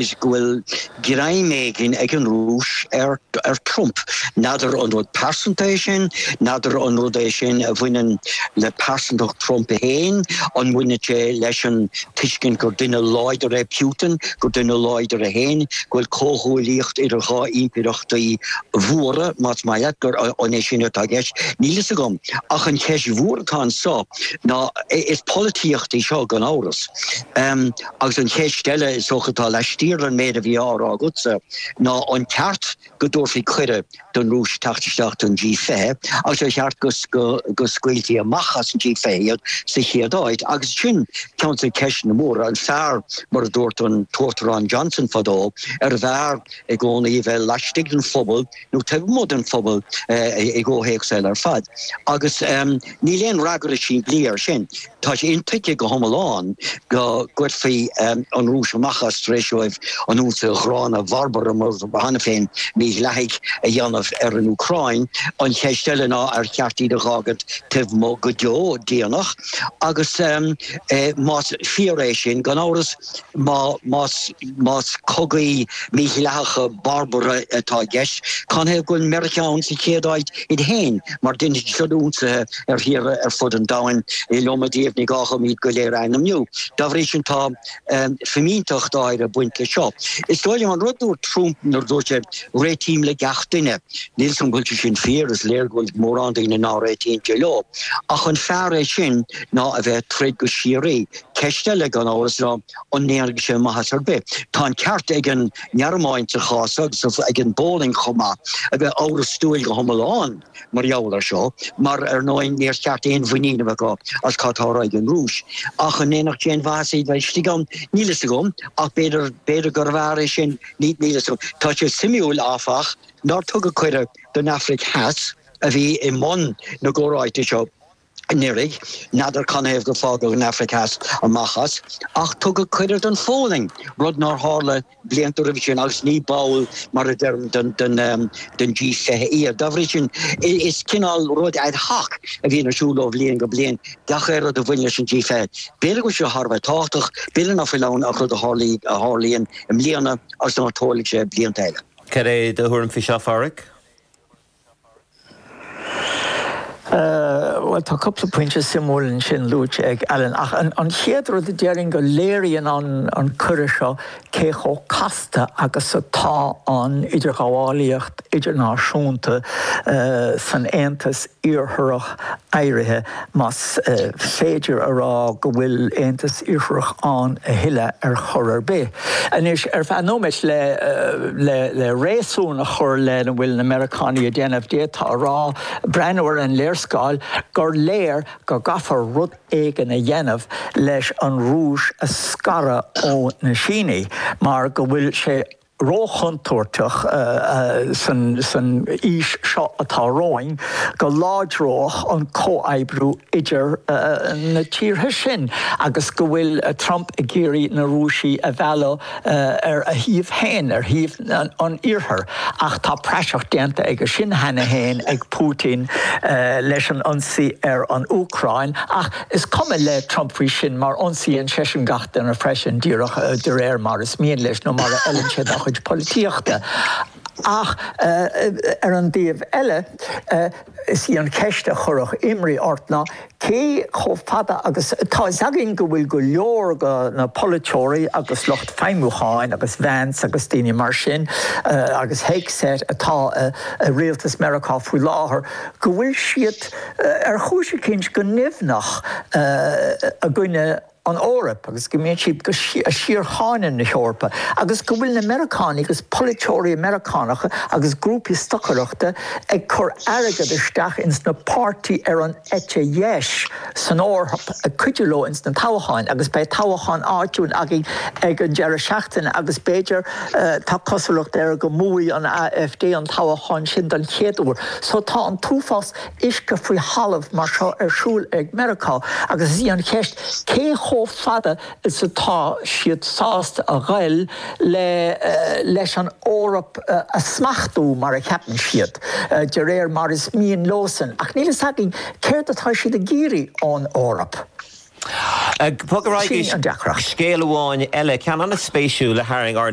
is go bhfuil greim éigin ag an Rúis ar, ar Trump. N'fheadar an rud pearsanta é sin, n'fheadar an rud é sin a bhaineann le pearsantacht Trump féin, an mbaineann sé leis an tuiscint gur duine láidir é Putin, gur duine láidir é féin, go bhfuil comhghuaillíocht idir dhá impireachtaí mhóra, más maith leat, gur, an é sin atá i gceist? Níl fhios agam. Ach an cheist mhór atá anseo ná, is polaitíocht í seo gan amhras. Agus an cheist eile is dócha atá laistiar den méid a bhí á rá agatsa ná an ceart go dtabharfaí cuireadh don Rúis teacht isteach don G20 agus ar cheart go scaoilfí amach as an G20 iad sa chéad áit? Agus sin ceann de na ceisteanna móra. An fearr, mar a dúirt an tUachtarán Johnson fadó, arbh fhearr i gcónaí a bheith laistigh den phuball, nó taobh amuigh den phuball i gcomhthéacs eile ar fad. Agus níl aon fhreagra simplí air sin. Tá sé intuigthe go hiomlán go gcuirfí an Rúis amach as tar éis dóibh an ionsaí ghránna bharbartha, mar atá cheana féin mídhleathaigh, a dhéanamh ar an Úcráin. An cheist eile ná ar cheart iad a dh'fhágaint taobh amuigh go deo deireanach? Agus más fíor é sin, gan amhras, Más cogaí mídhleathacha barbartha atá i gceist, canathaobh go bhfuil Meiriceá ann sa chéad áit iad féin, mar deineadar siúd ionsaithe ar thíortha ar fud an domhain, an iliomad díobh, ní gá dhom iad go léir a ainmniú. Dá bhrí sin tá fimínteacht áirithe ag baint leis seo. Is dóigh liom an rud a dúirt Trump nuair a dúirt sé Réitím le gach duine. Níl 's agam go bhfuil sé sin fíor, is léir go bhfuil mórán daoine ná réitíonn sé leo. Ach an fearr é sin ná a bheith ag troid go síoraí? Ceist eile, gan amhras, ná an ndéanfadh sé maitheas ar bith. Tá an ceart ag an nGearmáin sa chás seo, agus ag an bPólainn chomh maith, a bheith amhrastúil go hiomlán mar gheall air seo, mar ar ndóigh níor cheart aon mhuinín a bheith acu as cad atá á rá ag an Rúis. Ach an ndéanfadh sé aon mhaitheas iad a bheith istigh ann? Níl a fhios agam, ach b'fhéidir, b'fhéidir gurbh fhearr é sin, níl a fhios agam. Tá sé suimiúil, áfach, nár tugadh cuireadh don Afraic Theas, a bhí i mbun na gcomhráite seo, anuraidh, n'fheadar canathaobh gur fágadh an Afraic Theas amach as, ach tugadh cuireadh don Pholainn, rud nár tharla blianta roimhe sin agus ní ball, mar a deirim, den G20 iad. Dá bhrí sin, is cineál rud ad hoc a bhíonn ar siúl ó bhliain go bliain, gach aon rud a bhaineann leis an G20. B'fhéidir go bhfuil sé thar a bheith tábhachtach, b'fhéidir ná fuil ann ach rud a tharlaíonn i mbliana agus ná tarlóidh sé blianta eile. Cad é do thuairim faoi seo, a Pháraic? Bhuel, tá cúpla pointe suimiúil ansin luaite ag Alan, ach an chéad rud a déarfainn go léiríonn an cuireadh seo cé chomh casta agus atá an idirghabhálaíocht idirnáisiúnta san Aontas Iartharach éirithe. Más féidir a rá go bhfuil Aontas Iarthair ann a thuilleadh ar chor ar bith anois, ar feadh nóiméid, le réasún a chur lena bhfuil na Meiriceánaigh ag déanamh, d'fhéadfá a rá, breathnú ar an léarscáil, gur léir go gcaithfear rud éigin a dhéanamh leis an Rúis a scaradh ó na Sínigh mar go bhfuil sé róchontúirteach san aois seo atá romhainn go láidreodh an comhoibriú idir na tíortha sin agus go bhfuil Trump ag iarraidh na Rúisigh a mhealladh ar a thaobh féin, ar thaobh an Iarthair. Ach tá praiseach déanta dhe sin cheana féin ag Putin leis an ionsaí ar an Úcráin. Is cuma le Trump faoi sin mar ionsaíonn seisean gach duine freisin, díreach de réir mar is mian leis nó mar a fheileann sé dá chuid polaitíochta. Ach ar an dtaobh eile, is í an cheist a chuirfeadh imní ort ná cé chomh fada agus tá a fhios againn go bhfuil go leor de na polaiteoirí agus lucht feidhmiúcháin agus Vance agus daoine mar sin agus Hegseth atá i rialtas Meiriceá faoi láthair, go bhfuil siad. ar chúis eicínt, go nimhneach i gcoinne an Eoraip agus go mbíonn siad ag síorcháineadh na hEorpa agus go bhfuil na Meiriceánaigh agus polaiteoirí Meiriceánacha agus grúpaí stocaireachta ag cur airgead isteach ins na páirtithe ar an eite dheis san Eoraip ag cuidiú leo ins na toghcháin agus beidh toghchán áitiúil againn ag an deireadh seachtaine agus b'fhéidir, tá cosúlacht air, go mbuafaidh an AfD an toghchán sin don chéad uair so tá an t-uafás. uisce faoi thalamh mar seo ar siúl ag Meiriceá agus is í an cheist cé chomh fada is atá siad sásta a ghoil le leis an Eoraip a smachtú mar a cheapann siad, de réir mar is mian leosan, ach níl a fhios againn céard atá siad ag iarraidh ón Eoraip. Sin í an deacracht. Scéal amháin eile, ceann an-spéisiúil a tharraing ár.